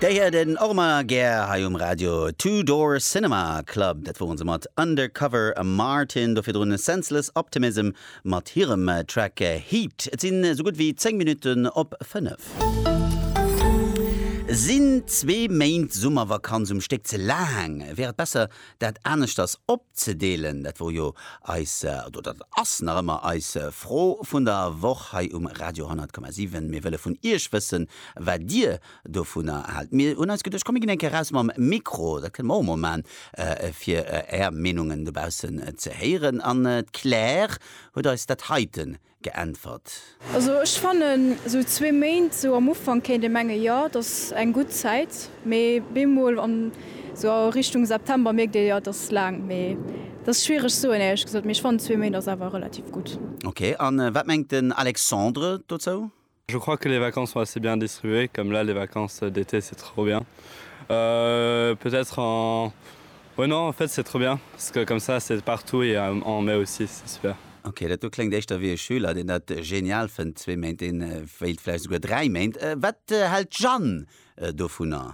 Där hiert een och emmer gär hei um Radio. Two Door Cinema Club, dat woren se mat Undercover Martin, do virdrun Senseless Optimism mat hirem Track Heat. Et sinn esou gutt wéi 10 Minutten op 5. Sinn zwee Méint Summervakanz um Stéck ze laang? Wär et besser, Dat aneschters opzedeelen, dat wor jo eis, oder dat ass nach ëmmer eis Fro vun der Woch hei um Radio 100,7. Mir wëlle vun Iech wëssen, wat Dir dovunner haalt. Mir hunn eis geduecht, komm mir ginn eng Kéier raus mam Mikro, dat kënnen mer och emol maachen, fir Är Meenungen dobaussen ze héieren. An d'Claire huet eis dat heiten geäntwert. Also ech fannen sou zwee Méint sou am Ufank kéint ee mengen jo et ass eng gutt Zäit, mee bemol an sou a Richtung September mierkt ee jo et ass laang, mee et ass schwiereg soen éierlech gesot, mee ech fannen zwee Méint ass awer relativ gutt. Ok, an wat mengt den Alexandre dozou? Je crois que les vacances sont assez bien distribuées comme là les vacances d'été c'est trop bien euh peut être en ouais non en fait c'est trop bien parce que comme ça c'est partout et en mai aussi c'est super. Ok, dat do kléngt éischter wéi e Schüler, deen dat genial fënnt, zwee Méint, deen wéilt vläicht souguer dräi Méint. Wat hält d'Jeanne dovunner?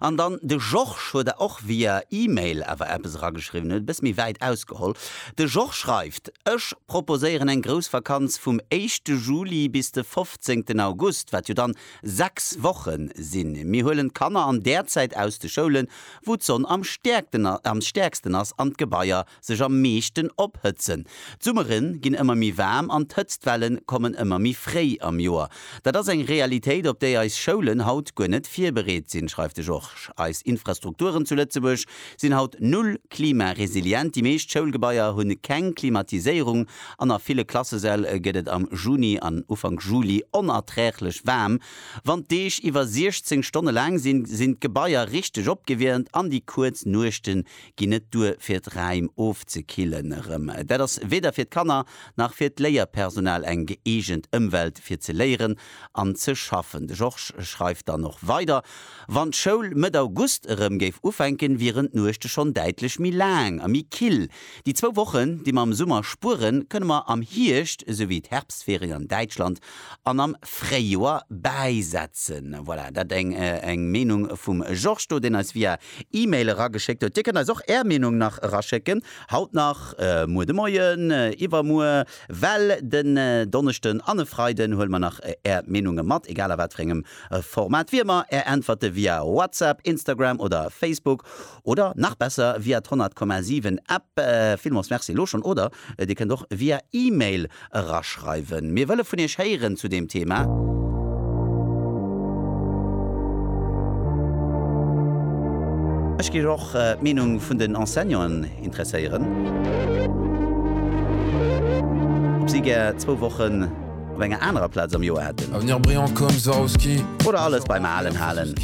An dann, de Georges huet der och via Email awer eppes erageschriwwen, huet e bësse méi wäit ausgeholl. De Georges schreift, Ech proposéieren eng grouss Vakanz vum éischte Juli bis de fofzéngten August, wat jo dann sechs Woche sinn. Mir huelen d'Kanner an där Zäit aus de Schoulen, wou d'Sonn am stäerksten ass, an d'Gebaier, sech am meeschten ophëtzen. D'Summere ginn ëmmer méi waarm an d'Hëtztwelle kommen ëmmer méi fréi am Joer. Dat ass eng Realitéit, op déi eis Schoulen haut guer net virbereet sinn, schreift de Georges. Eis Infrastrukturen zu Lëtzebuerg sinn haut null klimaresilient. Déi meescht Schoulgebaier hu keng Klimatiséierung an a ville Klassesäll gëtt et am Juni an Ufank Juli onerträglech waarm. Wann d'Deeg iwwer 16 Stonne laang sinn, sinn d'Gebaier richteg opgewiermt an déi kuerz Nuechte ginn net duer fir d'Räim ofzekillen. Erëm dat ass weder fir d'Kanner nach fir d'Léierpersonal eng gëeegent Ëmwelt fir ze léieren an ze schaffen. De Georges schreift dann och weider, Wann d'Schoul Mëtt August erëm géif ufänken, wieren d'Nuechte schonn däitlech méi laang a méi kill. Déi zwou Wochen, déi mer am Summer spueren, kënne mer am Hierscht, esou wéi d'Herbstferien an Däitschland, an am Fréijoer bäisetzen. Voilà, dat eng eng Meenung vum Georges do, deen eis via Email erageschéckt huet. Dir kënnt eis och Är Meenung nach eraschécken, haut nach, muer de Moien, iwwermuer, well den Donneschden an e Freiden huele mer nach Är Meenunge mat, egal a wat fir engem Format. Wéi ëmmer Är Äntwerte via WhatsApp, Instagram oder Facebook oder nach besser via d'Honnertkommasiwwen App. Villmools Merci elo schonn oder Dir kënnt och via E-Mail eraschreiwen. Mir wëlle vun Iech héieren zu deem Thema. Ech géif och d'Meenung vun den Enseignanten interesséieren, ob si gär zwou Wochen op enger anerer Plaz am Joer hätten. Oder alles beim Alen halen.